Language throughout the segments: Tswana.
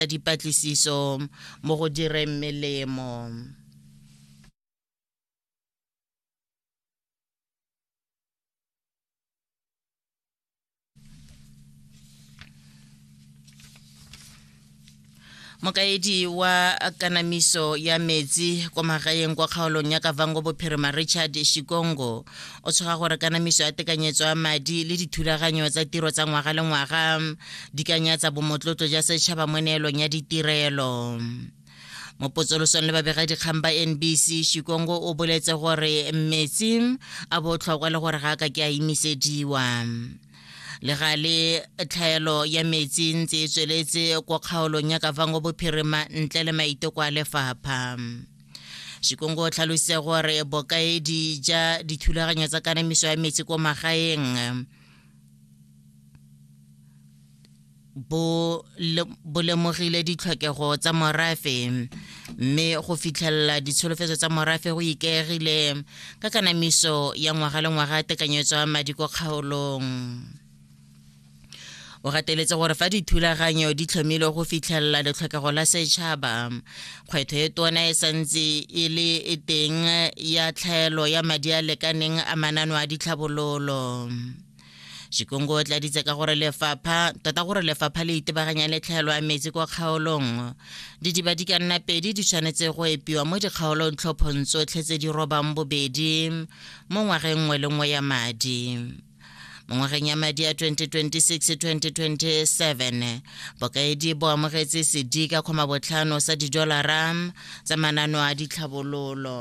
ya dipatlisiso mo go direng melemo mokaedi wa kanamiso ya metsi kwa magaeng kwa kgaolong ya kavango bophirima richard shikongo o tshoga gore kanamiso ya tekanyetso ya madi le dithulaganyo tsa tiro tsa ngwaga le ngwaga di ka nyatsa bomotlotlo ja setšhaba mo neelong ya ditirelo mo potsolosong le babegadikgang ba nbc shikongo o boletse gore metsi a botlhokwa le gore ga a ka ke a imisediwa le ga le tlhaelo ya metsi ntse e tsweletse kwa kgaolong ya kavango bophirima ntle le maiteko a lefapha Shikongo o tlhalositse gore bokaedi ja dithulaganyo tsa kanamiso ya metsi ko magaeng bo lemogile ditlhokego tsa morafe mme go fitlhelela ditsholofetso tsa morafe go ikaegile ka kanamiso ya ngwaga le ngwaga tekanyetso ya madi ko kgaolong o gateletse gore fa dithulaganyo di tlhomilwe go fitlhelela letlhokego la setšhaba kgwetho e tona e santse e le e teng ya tlhaelo ya madi a lekaneng a manano a ditlhabololo Shikongo o tladitse ka gore lefapha tota gore lefapha le itebaganya le tlhaelo ya metsi kwa kgaolong didiba di ka nna pedi di tshwanetse go epiwa mo dikgaolong tlhophong tsotlhe tse di robang bobedi mo ngwageng nngwe le nngwe ya madi mo ngwageng ya madi ya 2026-2027 bokaedi bo amogetse sedi ka kgoma botlhano sa didolara tsa manano a ditlhabololo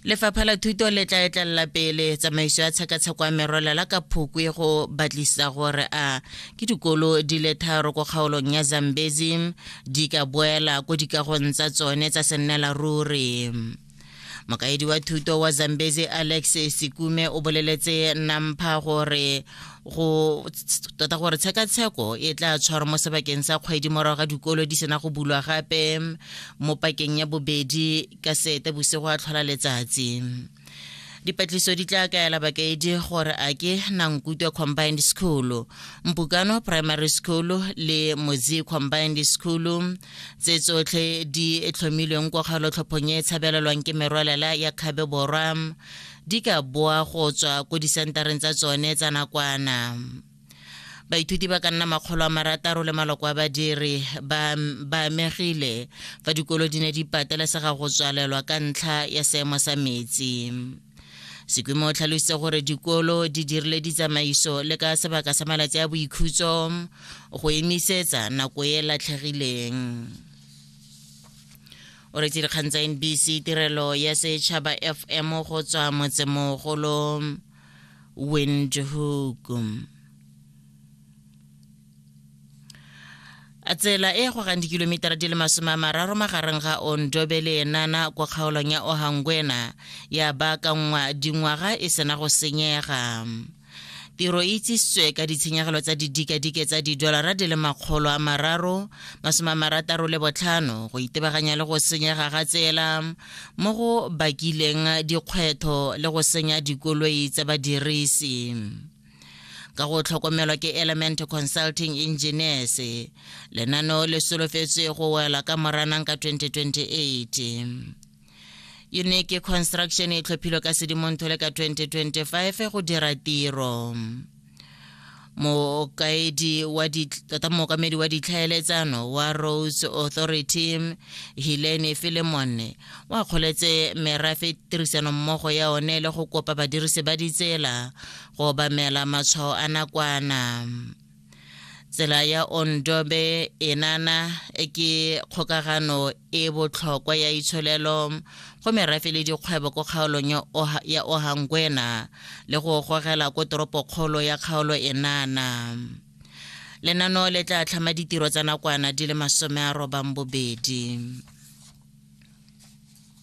lefapha la thuto le tla etlelela pele tsamaiso ya tshekatsheko ya merwela la ka phukwe go batlisa gore a ke dikolo di le tharo ko kgaolong ya zambezi di ka boela ko dikagong tsa tsone tsa sennela ruri mokaedi wa thuto wa zambezi alex sekume o boleletse nampha gore go tota gore tshekatsheko e tla tshwara mo sebakeng sa kgwedi morago ga dikolo di sena go bulwa gape mo pakeng ya bobedi ka sete bosigo a tlhola letsatsi Dipatliso di tla kaela bakaedi gore a ke Nankutwe Combined School, Mpukano Primary School le Mozi Combined School tse tsotlhe di tlhomilweng kwa kgaolotlhophong e e tshabelelwang ke merwalela ya Kgabe Borwa di ka boa go tswa ko disentareng tsa tsone tsa nakwana. Baithuti ba ka nna makgolo a marataro le maloko a badiri ba amegile fa dikolo di ne di patelesega go tswalelwa ka ntlha ya seemo sa metsi. Sekwimo o tlhalositse gore dikolo di dirile ditsamaiso le ka sebaka sa malatsi a boikhutso go emisetsa nako e latlhegileng o retse dikgang tsa nbc tirelo ya setšhaba fm go tswa motsemogolo win jehogum a tsela e gogang dikilomitara di le masome a mararo magareng ga ondobe le enana kwa kgaolong ya ohangwena ya baakanngwa dingwaga e sena go senyega tiro e itsisitswe ka ditshenyegelo tsa didikadike tsa didolara di le makgolo a mararo masome a marataro le botlhano go itebaganya le go senyega ga tsela mo go bakileng dikgwetho le go senya dikoloi tsa badirisi ka go tlhokomelwa ke element consulting engineers lenaneo le solofetswe go wela ka moranang ka 2028 unique construction e tlhophilwe ka sedimonthole ka 2025 go dira tiro mokaedi wa tota mookamedi wa ditlhaeletsano wa rose authority hilene filemone o akgoletse merafe tirisanommogo ya one le go kopa badirisi ba ditsela go obamela matshwao a nakwana tsela ya ondobe enana ke kgokagano e botlhokwa ya itsholelo go merafe le dikgwebo ko kgaolong ya, Oha, ya Ohangwena le go gogela ko toropokgolo ya kgaolo enana. Lenano le tla tlhama ditiro tsa nakwana di le masome a robang bobedi.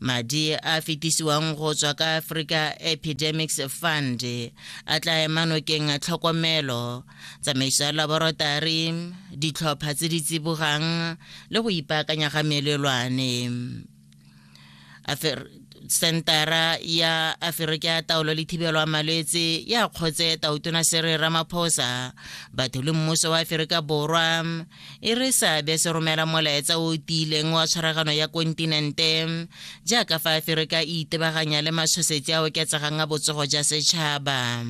madi a fetisiwang go tswa ka africa epidemics fund a tla ema nokeng tlhokomelo tsamaiso ya laborotari ditlhopha tse di tsibogang le go ipaakanya ga melelwane sentara ya aferika ya taolo le thibelo ya malwetse ya kgotse tautona sere ramaphosa batho le mmuso wa aferika borwa e re seabe se romela molaetsa o o tiileng wa tshwaragano ya kontinente jaaka fa aferika e itebaganya le mashosetsi a oketsegang a botsogo ja setšhaba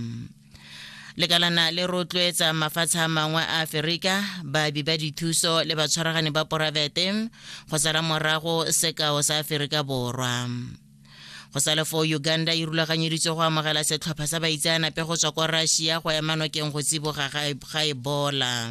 lekalana le rotloetsa mafatshe a mangwe a aferika baabi ba dithuso le batshwaragani ba poraefete go sala morago sekao sa aferika borwa go sa le foo uganda e rulaganyeditswe go amogela setlhopha sa baitseanape go tswa kwa russia go ema nokeng go tsiboga ga ebola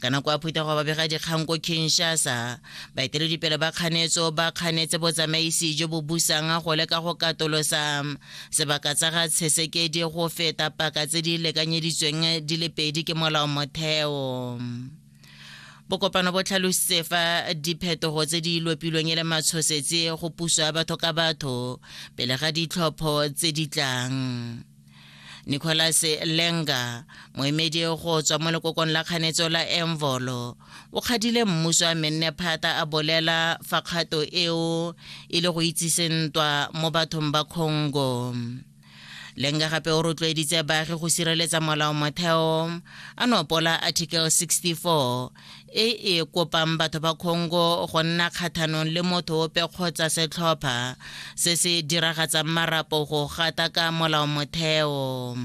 ka nako a phutha go babega dikgang ko kinshasa baeteledipele ba kganetso ba kganetse botsamaisi jo bo busang go leka go katolosa sebaka tsa ga tshesekedi go feta paka tse di lekanyeditsweng di le pedi ke molao motheo bokopano bo tlhalositse fa diphetogo tse di lopilweng e le matshosetse go puso ya batho ka batho pele ga ditlhopho tse di tlang nicholas lenga moemedi go tswa mo lekokong la kganetso la envolo o kgadile mmuso a menne phata a bolela fa kgato eo e le go itsise ntwa mo bathong ba congo lenga gape o rotloeditse baagi go sireletsa molao motheo a nopola article 64 e e kopang batho ba Congo go nna kgathanong le motho ope kgotsa setlhopha se se diragatsang marapo go gata ka molaomotheo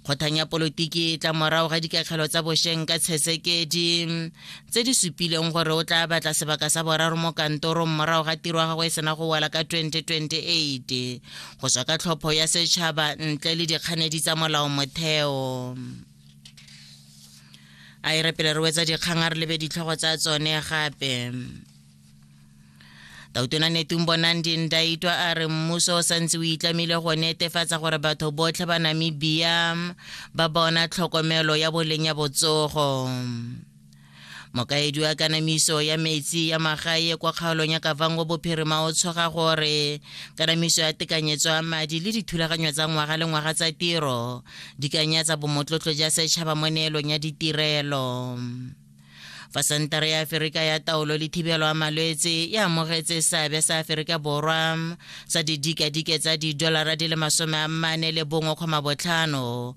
kgothang ya polotiki e tla morago ga dikatlhelo tsa bosheng ka tshesekedi tse di supileng gore o tla batla sebaka sa boraro mo kantorong morago ga tiro ya gagwe e sena go wela ka 2028 go tswa ka tlhopho ya setšhaba ntle le dikganedi tsa molao motheo a e re pele re wetsa dikgang a re lebe ditlhogo tsa tsone gape tautona netung bonang dindaitwa a re mmuso o santse o itlamile go netefatsa gore batho botlhe ba namibia ba bona tlhokomelo ya boleng ya botsogo mokaedi wa kanamiso ya metsi ya magae kwa kgaolong ya kavango bophirima o tshoga gore kanamiso ya tekanyetso ya madi le dithulaganyo tsa ngwaga le ngwaga tsa tiro di kanyatsa bomotlotlo ja setšhaba mo neelong ya ditirelo fa sentara ya aferika ya taolo le thibelo ya malwetse e amogetse seabe sa aferika borwa sa didikadike tsa didolara di le masome a mane le bongwe kgoma botlhano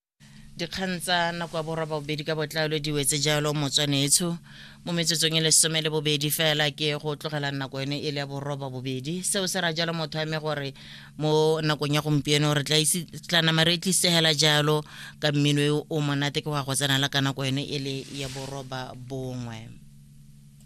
dikgang tsa nako ya borwa bobedi ka botlalo di wetse jalo motswanetsho mo metsotsong e lesome le bobedi fela ke go tlogela nako yone e le ya boroba bobedi seo se ra jalo motho ame gore mo nakong ya gompieno re tla nama re tlisegela jalo ka mmino o monate ke go ya go tsenala ka nako yone e le ya boroba bongwe